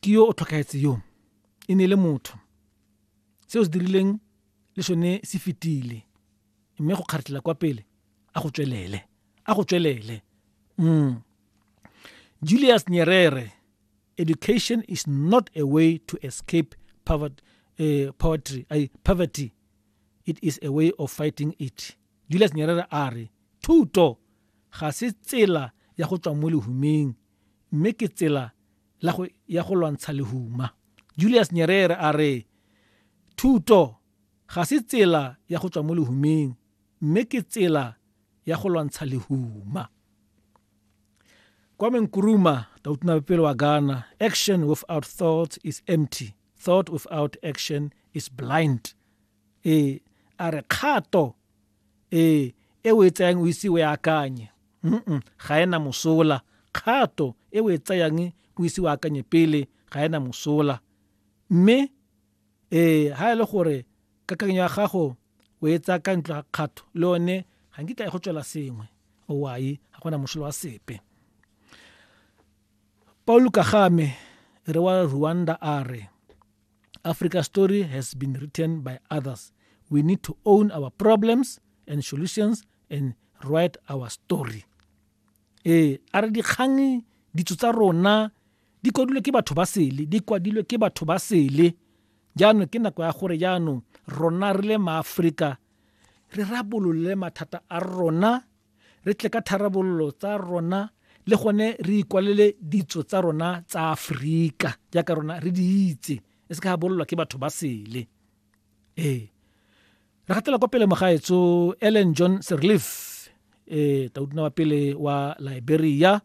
ke yo o tlhokaetse yo e ne e le motho se o se dirileng le sone se fetile mme go kgaretlela kwa pele a go tswelele a go tswelele mm. Julius Nyerere education is not a way to escape poverty, uh, eh, poverty, uh, poverty it is a way of fighting it Julius Nyerere a re thuto ga se tsela ya go tswa mo lehumeng mme ke tsela la go, ya go lwantsha lehuma. Julius Nyerere a re, Thuto ga se tsela ya go tswa mo lehumeng, mme ke tsela ya go lwantsha lehuma. Kwame Nkrumah, tautunabepele wa Ghana, action without thought is empty, thought without action is blind. E a re kgato ee e o e tsayang o ise o e akanye mm ga ena mosola kgato e o e tsayang o ise o akanye pele ga ena mosola mme ee ga e le gore kakanyo ya gago o e tsaya ka ntlo ga kgato le one ga nkitla e go tswela sengwe owae ga gona mosola wa sepe paulo kagame re wa rwanda a re Africa story has been written by others. We need to own our problems and solutions and write our story. Eh, a re dikgang ditso tsa rona di kwadilwe ke batho ba sele, di kwadilwe ke batho ba sele. Jaanong ke nako ya gore jaanong rona re le maAforika re rabolole mathata a rona re tle ka tharabololo tsa rona le gone re ikwalele ditso tsa rona tsa Aforika jaaka rona re di itse e se ka ga bololwa ke batho ba sele ee re gatela kwa pele mogaetso ellen john serleaf eh taudina wa pele wa liberia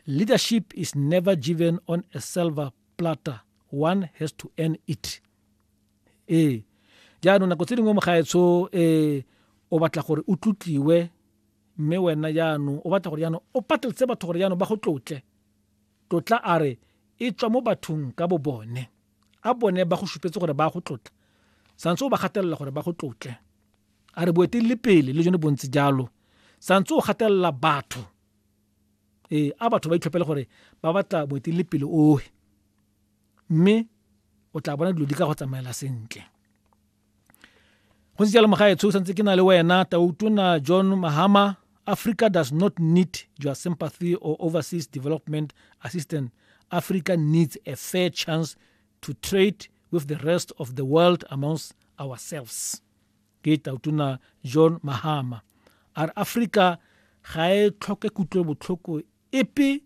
leadership is never given on a silver platter one has to earn it ee jaanong nako tse dingwe mogaetsho um o batla gore o tlotliwe mme wena jaanong o batla gore jaanong o patletse batho gore jaanong ba go tlotle tlotla a re e tswa mo bathong ka bo bone a bone ba go supetse gore ba go tlotla santse o ba gatelela gore ba go tlotle a re boetelele pele le jone bontsi jalo santse o gatelela batho ee a batho ba itlhopele gore ba batla boetelele pele ohe mme o tla bona dilo di ka go tsamaela sentle go ntse jalo mogaetsho o santse ke na le wena tautona john mahama africa does not need your sympathy or overseas development assistance africa needs a fair chance to trade with the rest of the world amongst ourselves ke tautona john mahama a re africa ga e tlhoke kutlobotlhoko epe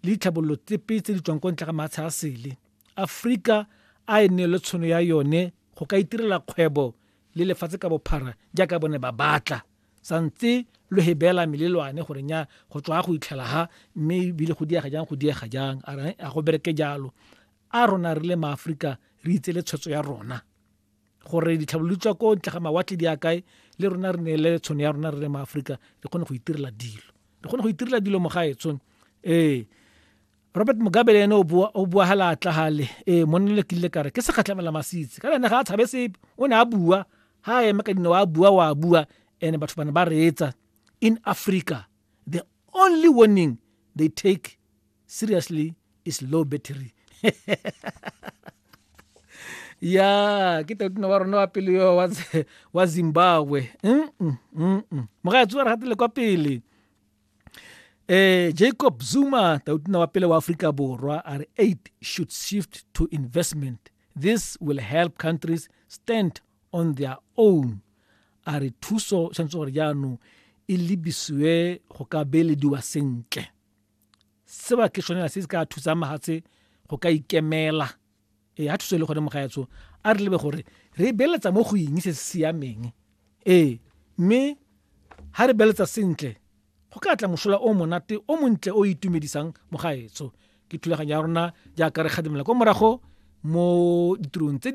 le ditlhabololo tsepe tse di tswang ko ntle ga maatsha a sele. Aforika a e neelwe tshono ya yone go ka itirela kgwebo le lefatshe ka bophara jaaka bone ba batla sa ntse lo he beela melelwane gore nya go tswa go itlhela ha mme ebile go diega jang go diega jang a go bereke jalo a rona re le maaforika re itse le tshwetso ya rona gore ditlhabololo tswa ko ntle ga mawatle di a kae le rona re neele tshono ya rona re le maaforika re kgone go itirela dilo re kgone go itirela dilo mogaetsong ee robert mugabe le ene o bua ga laatla gale ee monne le kile kare ke segatlhamela masitse ka ene ga a tshabe sepe o ne a bua ga a eme ka dinao a bua wa bua and batho bane ba reetsa in africa the only warning they take seriously is low battery ya ke tatuna wa rona wa pele yo wa zimbabwe mm, mm, mm, mogatsi wa re gatele kwa pele eh jacob zuma tautuna wa pele wa afrika borwa a re aid should shift to investment this will help countries stand on their own a re thuso tshwanetse gore jaanong e lebisiwe go ka beelediwa sentle seba ke tshwanela se se ka thusang mahatshe go ka ikemela ee a thuso e le gone mogaetsho a re lebe gore re beeletsa mo go eng se se siameng ee mme ha re beletsa sentle go ka tla mosola o monate o montle o itumedisang mogaetsho ke thulaganyo ya rona jaaka re kgadimela kwa morago mo ditirong tse di